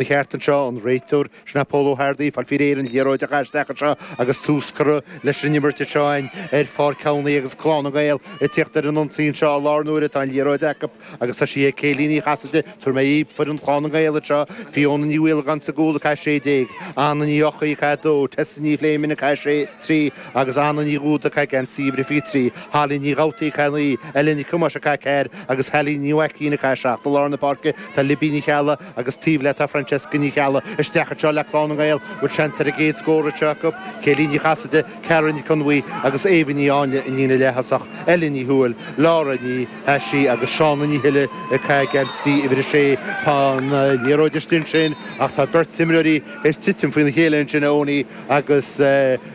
Ba cheart anseo an réiteoir, sin é Pól Ó hEartaigh, fáil faoi réir an liathróid a chaitheamh isteach anseo agus tús curtha leis an imirt anseo in ar Pháirc Thamhnaigh agus Clann na nGael ag tíocht ar an ionsaí anseo i láthair na huaire tá an liathróid acu agus tá sí ag Céline Ní Chasaide tabharfaidh mé foireann Chlann na nGael anseo, Fiona Ní Mhaolagáin sa gcúl ag caitheamh 16, Anna Ní Eochaidh ag caitheamh 2, Tessa Ní Phléimeann ag caitheamh 6, 3 agus Anna Ní Dhúda ag caitheamh geansaí uimhir a 23, Holly Ní Dhabhtaí ag caitheamh 9, Ellen Nic Thomáis ag caitheamh 4 agus Hallie Ní Mhaicín ag caitheamh 7 I lár na páirce tá Libby Ní Cheallaigh, agus taobh léi tá Francesca Ní Cheallaigh isteach anseo le Clann na nGael bhfuil seans ar an gcéad scór ag teacht acu, Céilí Ní Chasaide, Cara Nic Con Mhaoi agus Éabha Ní Áinle, sa líne leath-thosach, Ella Ní Thuathail, Laura Ní hAisí agus Seána Ní Shile ag caitheamh geansaí uimhir a sé. Tá an liathróid istigh ansin ach tá beirt imreoirí ar titim faoina chéile ansin, Eoiní agus.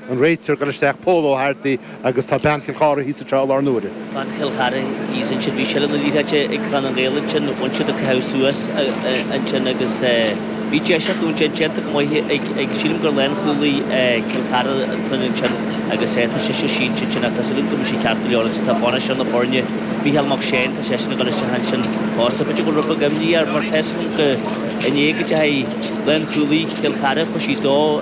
An réiteoir, ag dul isteach Pól Ó hEartaigh agus tá bean Chill Chartha thíos anseo i láthair na huaire. Bean Chill Chartha thíos ansin, bhí seilbh na liathróide ag Clann na nGael ansin, bhain siad an caitheamh suas ansin agus bhí deis acu ansin, déanta go maith ag, sílim gur lánchúlaí Chill Chartha atá ann ansin agus tá sise sínte ansin ach tá súil agam go mbeidh sí ceart go leor ansin. Tá bainisteoir na foirne, Micheál Mac Séain, tá seisean ag dul isteach ansin fosta. B'fhéidir go raibh beagán imní air mar tá súil agam go, inné go deimhin, lánchúlaí Chill Chartha, chuir sí dó,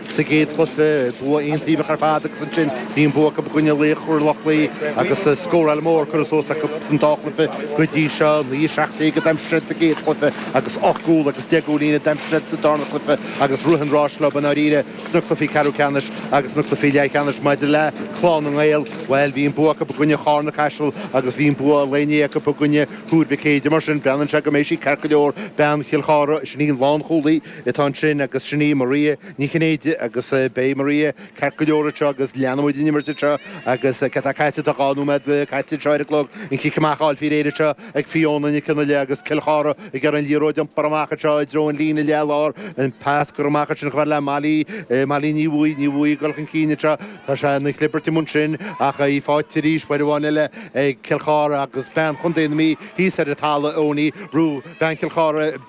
Sa gcéad chluiche bhí bua aontaobhach ar fad agus ansin bhí an bua acu i gcoinne Laochra Loch Lao agus scóráil mór curtha suas acu san dá chluiche go dtí seo. 9 17 a d'aimsigh siad sa gcéad chluiche agus ocht gcúl agus deich gcúilín a d'aimsigh siad sa darna cluiche agus rith an ráis leo i ndáiríre sna cluichí ceathrú ceannais agus sna cluichí leathcheannais. Maidir le Clann na nGael, bhuel, bhí an bua acu i gcoinne Charna Caiseal agus bhí an bua lae inné acu i gcoinne Thuar Mhic Éadaigh. Mar sin, breathnaíonn sé go mbeidh sí ceart go leor bean Chill Chartha, sin í an lánchúlaí, Atá ansin, agus sin í Maria Ní Chinnéide agus beidh Maria ceart go leor anseo agus leanfaidh muid an imirt anseo agus cad tá caite, tá dhá nóiméad caite anseo ar an gclog, an cic amach á fháil faoi réir anseo ag Fiona Nic an Fhailigh agus Cill Chartha ag iarraidh an liathróid a iompar amach anseo i dtreo an líne leathlár, an pas curtha amach ansin chomh fada le Molly, Molly Ní Bhuaidh, Ní Bhuaidh ag dul chun cinn anseo, tá sé ina chlibirt amuigh ansin ach í faighte arís, uair amháin eile ag Cill Chartha agus bean chontae na Mí thíos ar an talamh, Eoiní Rue, bean Chill Chartha.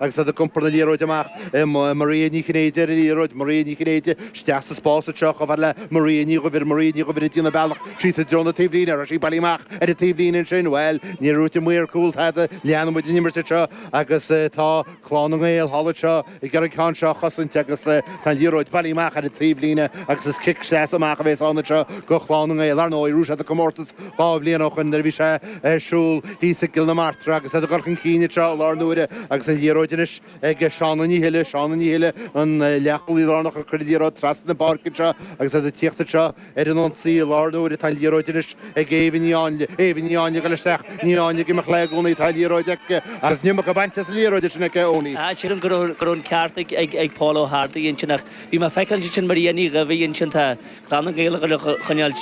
Agus tá siad ag iompar na liathróide amach, imíonn Maria Ní Chinnéide ar an liathróid, Maria Ní Chinnéide isteach sa spás, anseo chomh fada le Maria Ní Dhuibhir, Maria Ní Dhuibhir ag déanamh a bealach síos i dtreo na taobhlíne, an raibh sí bailithe amach ar an taobhlíne ansin, bhuel, níor dhúirt an maor cúil tada, leanfaidh muid an imirt anseo agus tá Clann na nGael thall anseo ag iarraidh an ceann seo a chosaint agus tá an liathróid bailithe amach ar an taobhlíne agus is cic sleasa amach a bhéas ann anseo do Chlann na nGael. Ar ndóigh, rug siad an comórtas. Dhá bhliain ó shoin, nuair a bhí sé ar siúl thíos i gCill na Martra agus iad ag cur chun cinn anseo i láthair na huaire agus an liathróid anois ag Shauna Ní Thuile, Shauna Ní Thuile an leath-chúlaí lárnach ag cur liathróid trasna na páirce anseo agus iad ag tíocht anseo ar an ionsaí i láthair na huaire tá an liathróid anois ag Éabha Ní Áinle, Éabha Ní Áinle ag dul isteach, Ní Áinle ag imeacht léi i gcónaí, tá an liathróid aici agus níl muca bainte as an liathróid sin aici i gcónaí. Sílim go raibh an ceart ag Paul Ó hArdaigh ansin ach bhí mé ag feiceáil ansin Maria Ní Dhaimhín ansin tá. Clann na nGael ag coinneáil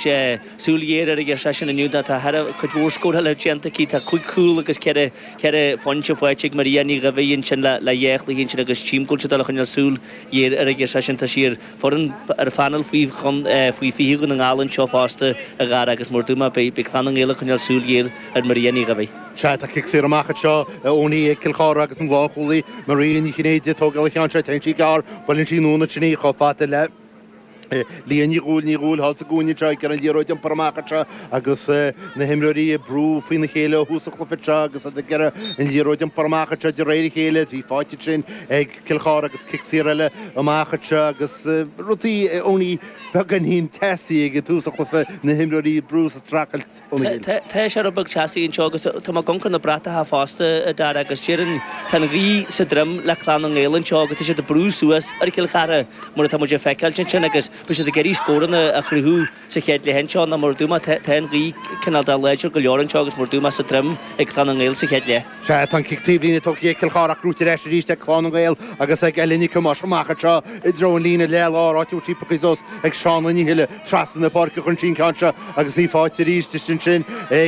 súil ghéar air, a deir seisean inniu. Tá thar cuid mhór scórála déanta aici, tá cúig chúl agus ceithre phointe faighte ag Maria Ní Dhaibhéid ansin le dhá chluiche ansin agus trí chúl sa dá choinneáil súil ghéar air, a deir seisean. Tá sí ar fhoireann, ar phainéal faoi fiche Dhún na nGall anseo fosta, a Dhara, agus mar a dúirt mé, beidh Clann na nGael ag coinneáil súil ghéar ar Maria Ní Dhaibhéid. Sea, tá cic saor amach anseo a Owenie ag Cill Chartha agus an lánchúlaí Maria Ní Chinnéide, ag tógáil an cheann seo, téann sí gearr, buaileann sí Nuala Ní Chinnéide chomh fada le. Liadh Ní Dhúill Ní Dhúill thall sa gcúinne seo ag iarraidh an liathróid a iompar amach anseo agus na himreoirí ag brú faoina chéile ó thús an chluiche seo agus iad ag iarraidh an liathróid a iompar amach anseo de réir a chéile is í fáite ansin ag Cill Chartha agus cic saor eile amach anseo agus rudaí a Owenie beagáinín teasaí ag tús an chluiche na himreoirí ag brú is ag streachailt Tá sé rud beag teasaí anseo agus tá mé ag amharc ar na bratacha fosta, a Dhara, agus déarfainn tá an ghaoth sa droim le Clann na nGael anseo agus tá siad ag brú suas ar Chill Chartha mar atá muid ag feiceáilt ansin agus beidh siad ag iarraidh scóranna a chruthú sa chéad leath anseo nó mar a dúirt mé, tá an ghaoth cineál de láidir go leor anseo agus mar a dúirt mé sa droim ag Clann na nGael sa chéad leath. Sea, tá an cic taobh líne tógtha ag Cill Chartha gnóthaithe ar ais arís ag Clann na nGael agus ag Ellie Nic Thomáis amach anseo i dtreo an líne leath-lár, áit a bhfuil sí pioctha suas ag Shauna Ní Thuile trasna na páirce chun cinn ceann seo agus í faighte arís ansin ag.